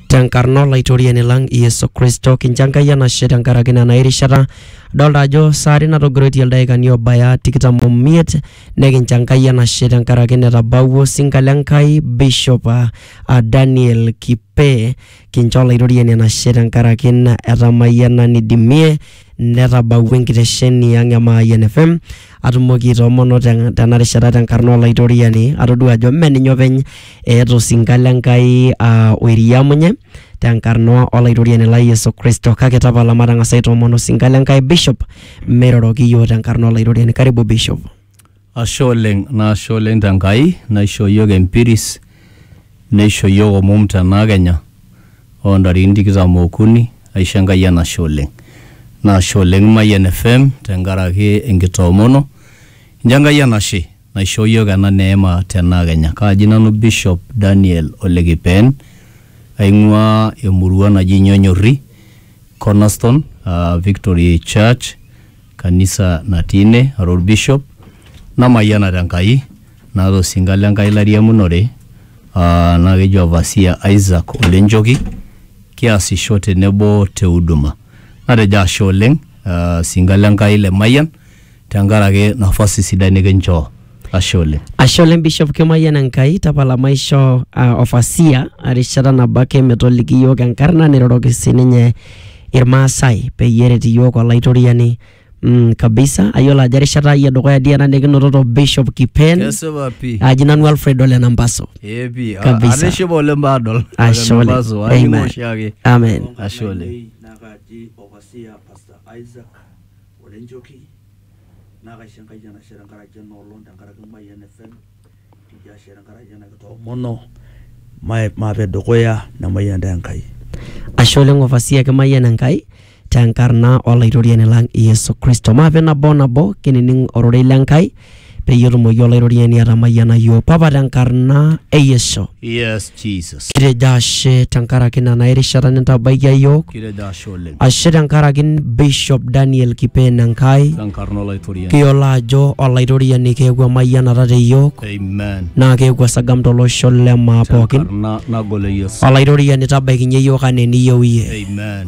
tenkarna olaitoriani lang Yesu Kristo kincho Enkai enashe tenkaraki nena erishata adolta ajo saari natogiroitie ildaikani obaya tikitam omiet nekincho Enkai enashe tenkaraki netabawua osinka le Enkai Bishop ah, ah, Daniel Kipe kincho olaitoriani enashe tenkaraki na etamayiana nidimie netabawua enkitesheni ang e Mayian FM atumoki aitoomono te- tena rishata tenkarna olaitoriani atodua ajo mme ninye openy eeta osinka le Nkai aa oiriamunye tenkarna olaitoriani lai Yesu Kristo kake tapala matang'asa aitoomono osinka le Nkai Bishop meiroroki iyiook tenkarna olaitoriani karibu Bishop Ashe oleng nashe oleng te Nkai naishoo iyiook empiris neisho iyiook omom tena kenya oo ntarikini tikitam okuni aisho Enkai enashe oleng. Nashe oleng Mayian FM tenkaraki enkitoomono inchoo Enkai enashe naishoo iyiook ena neema tena kenya. Kaaji nanu Bishop Daniel Ole Kipeen aing'uaa emurua naji Nyonyorri Cornerstone aa Victory Church. kanisa natii ine ara olbishop namayiana te Nkai naata osinka le Nkai lairiamunore aa naa keji Overseer Isaac Ole Njoki kiasisho tenebo te huduma. Natejo ashe oleng' aa sinka le Nkai le Mayian tenkaraki nafasi sidai nikinchoo. Ashe oleng. Ashe oleng Bishop Kimayian Enkai tapala maisho uh, ofasia erishata nabo ake metoliki iyiook enkarna niroroki sininye Irmaasai peyie eret iyiook Olaitoriani mm, kabisa ayiolo ajo erishata ai edukuya dii ena nikinototo Bishop Kipen Kesipa pii. aji nanu Alfred Ole Nambaso Ee pii. Kabisa. Atishipa oleng paadol. Ashe oleng. Olemaso, aning' Amen. oshiake. Amen. Ashe oleng. Nakaji Ovasia Pastor Isaac Olenjoki naa kaisho Enkai enashe tenkaraki ena olong tenkaraki Mayian FM nikijo ashe tenkaraki ena kitoomono mae maape dukuya nemayian taa Enkai. Ashe oleng ovasia kimayian Enkai tenkarna olaitoriani lang Yesu Kristo. Maape nabo o nabo kinining ororei le Nkai peyie etumoki olaitoriani atamayiana iyiook. Papa tenkarna e Yesu. Yes. Jesus. Kitejo ashe tenkaraki ina naa erishata nintabaikia iyiook. Kitejo ashe oleng. Ashe tenkaraki Bishop Daniel Kipeen Enkai. Tenkarna Olaitoriani. Kiyiolo ajo Olaitoriani keeku emayianata te iyiook Amen. naa keeku esagam tolosho le maa pookin. Tenkarna nagol e Yesu. Olaitoriani tabaikinye iyiook anaa eniyieu iyie. Amen.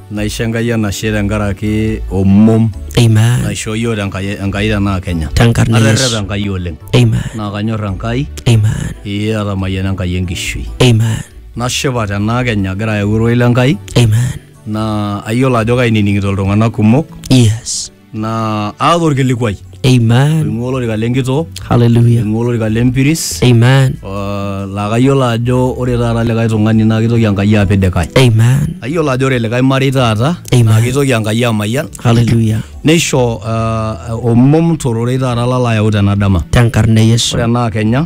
Naisho Enkai enashe tenkaraki omom Amen. naishoo iyiook tenkai Enkai tenaa Kenya. Tenkarna e Yesu. Aterrepa Enkai oleng. Amen. Naa kanyor Enkai, Amen. ee atamayiana Enkai enkishui. Amen. Nashipa tenaa Kenya agira ayau ororei le Enkai Amen. naa ayiolo ajo kainining'ito iltung'anak kumok Yes. naa aata orkilikuai Amen. oing'ua olorika lenkitoo Hallelujah. oing'ua olorika lempiris Amen. uh, laa kayiolo ajo ore taata likae tung'ani naa kitoki enkai apik likae Amen. ayiolo ajo ore likae marei taata Amen. naa kitoki enkai amayian Hallelujah. neisho uh, omom tororei taata lalo ayau tena dama Tenkarna e Yesu. ore enaa kenya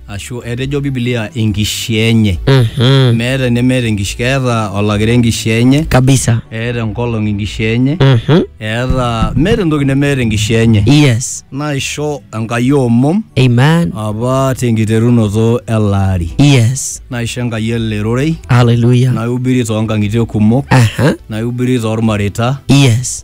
ashu etejo Biblia enkishaa enye. Mhm. Meeta enemeeta enkishaa, keeta olakira enkishaa enye, Kabisa. eeta enkolong enkishaa enye, Mhm. eeta meeta entoki nemeeta enkishaa enye. Yes. Naisho Enkai omom Amen. apa tenkiterunoto ele ari. Yes. Naisho Enkai ele rorei, Hallelujah. naihubiri toonkang'itie kumok, Aha. naihubiri toolmareita, Yes.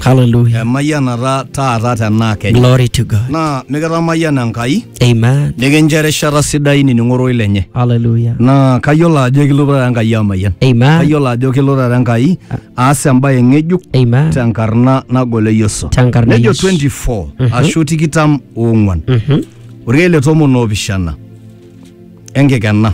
Hallelujah. emayianata taata tenaa kenya Glory to God. naa mikitamayiana enkai Amen. nikincho erishata sidai nining'o roi lenye Hallelujah. naa kayiolo ajo ekilotu taata enkai amayian Amen. kayiolo ajo kelo taata enkai aas embaye ng'ejuk Amen. tenkarna nagol e yesu Tenkarna e nejo Yesu. 24 ashu tikitam oong'uan Mhm. orkeek le tomon oopishana enkikena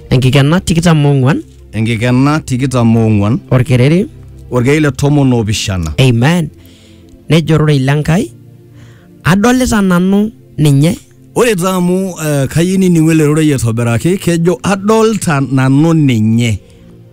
Enkikena tikitam ong'uan enkikena tikitam oong'uan orkereri. orkei le tomon oopishana Amen. Nejo ororei le Nkai, adolita nanu ninye. ore taa amu eh, kayieu nining'u ele rorei aitobiraki kejo adolta nanu ninye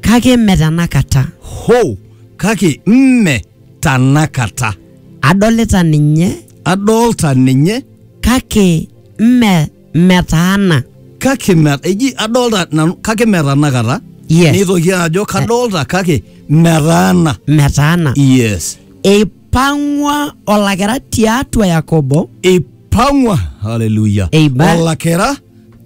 Kake mme tenakata. ho kake mme tanakata Adolita ninye adolta ninye kake mme metaana kake me- eji adolta nanu kake metanakata Yes. nitoki ajo kadolta kake metaana metaana yes eipang'ua olakira tiatua yakobo ipang'wa haleluya Amen. olakira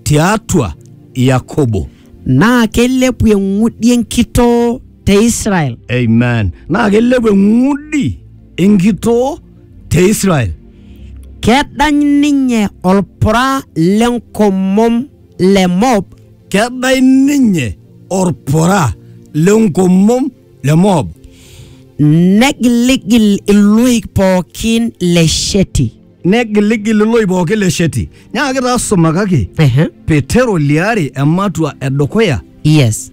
tiatua yakobo naa keilepu eng'udi enkitoo te israel amen naa kelepu eng'udi enkitoo te Israel. kedany ninye olpura le nkomom le Moab Kedai ninye orpura le nkomom le Moab. negiligil iloik pookin le Sheti. Negiligil iloik pooki le Sheti. Nyaaki taa sumakaki Ehe. Petero liare ematua edukuya Yes.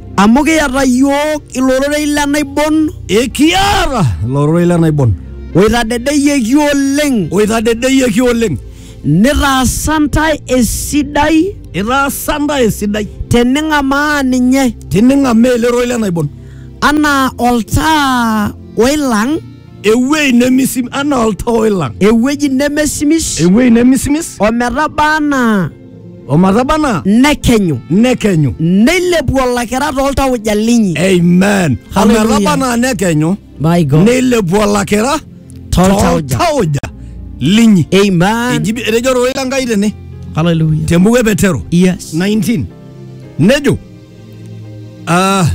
Amu kiata iyiook ilororei le naibon. Ekiata ilororei le naibon. Oitadedeyieki oleng. Oitadedeyieki oleng. Nitaasa ntae esidai. Itaasa ntae esidai. Tening'amaa ninye. Tining'amaa ele rorei le naibon. Anaa oltaa oilang. Ewuei nemisimis. Anaa oltaa oilang. Ewueji nemesimis. Ewuei nemisimis. Ometaba anaa. omatabana nekenyu nekenyu neilepu olakira tooltauja linyi amen Hallelujah. ometabana nekenyu my god neilepu olakira Toltauja. toltauja linyi amen Eji- etejo ororei le nkai tene hallelujah tembuku e petero yes 19 nejo ah,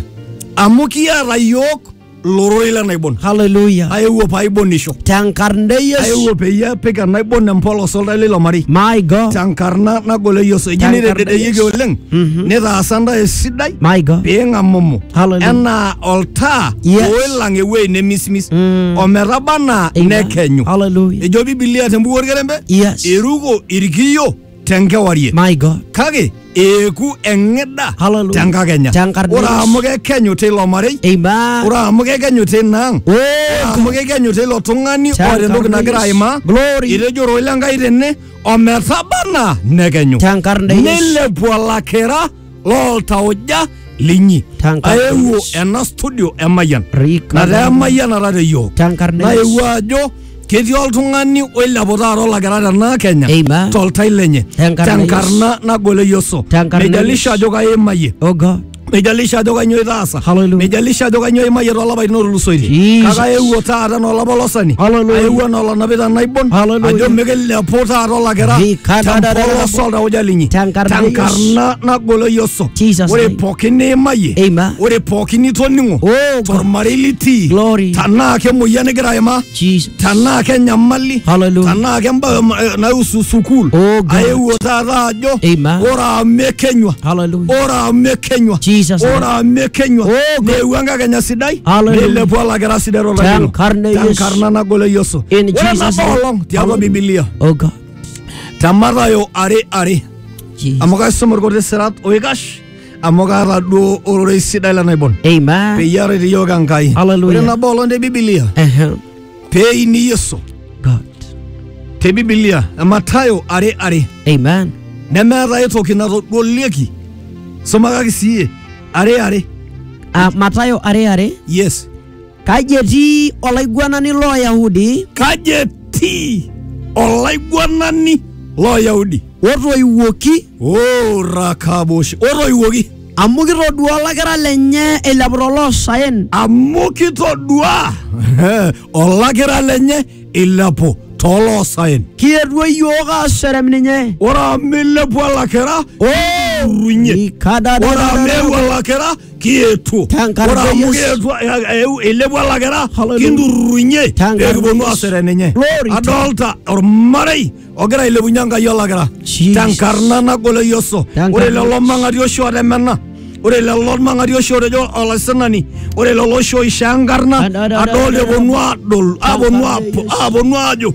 amu kiata yiok lororei lenaibon Hallelujah. aewuo paaibonnisho Tenkarna e Yesu. aewuo peyie apik enaibon empolos oltau leilo marei My God. tenkarna nagol e Yesu eji Tenkarna nitededeyieki Yesu. oleng Mhm. nitaasa ntae esidai My God. piing'amumu Hallelujah. enaa oltaa Yes. oilang ewueji nemisimis Mm. ometaba anaa Amen. nekenyu Hallelujah. ejo bibilia tembuku orkerembe Yes. iruko irkiyo tenkewarie My God. kake eeku eng'ida Hallelujah. tenkakenya Tenkarna ore Yesu. amu kekenyu teilo marei Amen. ore amu kekenyu teina ang ore Oh, amu kekenyu teilo tung'ani Tenkarna oota entoki nagira Yesu. aimaa Glory. etejo oroi lenkai tene ometabana nekenyu Tenkarna Yesu. nilepu olakira looltauja linyi Tankarna aewuo Yesu. ena studio emayian Rika nataa emayian nataa te yiok Tankarna naewuo Yesu. ajo ketii oltung'ani oilepu taata olakira tena kenya Amen. toltai lenye Tenkarna tenkarna nagol e yesu Tenkarna meijalisha Yesu. ajo kaimayie Oh God. meijalisha ajo kainyoo itaasa Hallelujah. nijalisha ajo kanyoo imayie toolapaitin ootulusoitie Jesus. kake aewuo taata nolapa olosani Hallelujah. aewuo nolanapita naibon Hallelujah. ajo mikilepu taata olakira Rikadadadada. tempolos oltauja linyi Tenkarna tenkarna nagolo Yesu Jesus ore name. pookin niimayie Amen. ore pookin nitoning'o Oh, God. tormarei litii Glory. tanaa kemoyian igira aimaa Jesus. tanaa kenyamali Hallelujah. tanaa kembae eh, naihusu sukuul Oh, God. aewuo taata ajo Amen. ore amu ekenywa Hallelujah. ore amu ekenywa Jesus. ore amu ekenywa Oh, God. neewuo enkakenya sidai Hallelujah. neilepu olakira sidai tolari Te nkarna e Yesu. tenkarna nagol e yesu In ore Jesus' nabo name. olong tiatua Hallelujah. bibilia Oh God. te matayo are are Jesus. amu kaisum irkuti sirat oikash amu kaata duo ororei sidai le naibon Amen. peyie aret iyiook Enkai. Ore Hallelujah. nabo olong te Bibilia Uh-huh. pee eini Yesu God. te Bibilia e Mathayo are are Amen. nemeeta ai toki natodolieki sumakaki siyie are are Uh, Mathayo are are. yes Kaji etii olaiguanani loo Yahudi Kaji etii olaiguanani loo Yahudi? otoiwuoki O Rakabosh, otoiwuoki. amu kitodua olakira lenye eilepu toloosaen Amu kitodua olakira lenye ilepu tooloosaen. kietuo iyiook aaserem ninye Ore amu ilepua olakira, irunye. Ore amu eewuo olakira, kietuo Tenkaraki ore amu Yesu. kietuo eh, eh, eilepua lakira Hallelujah. kinturrurunye Tenkaraki pekipuonu Yesu. asere ninye Glory to- adolta ormarei ogira ailepunye enkai olakira Jesus. tenkarna nagol e yesu Tenkarna ore lelo Yesu. mang'ati oshi otemena ore lelo mang'ati oshi otejo olaisinani ore lelo oshi oishaa enkarna Ad- ad- ad- adolta ad- eponu adol aponu Tenkarna apo- Yesu. aponu ajo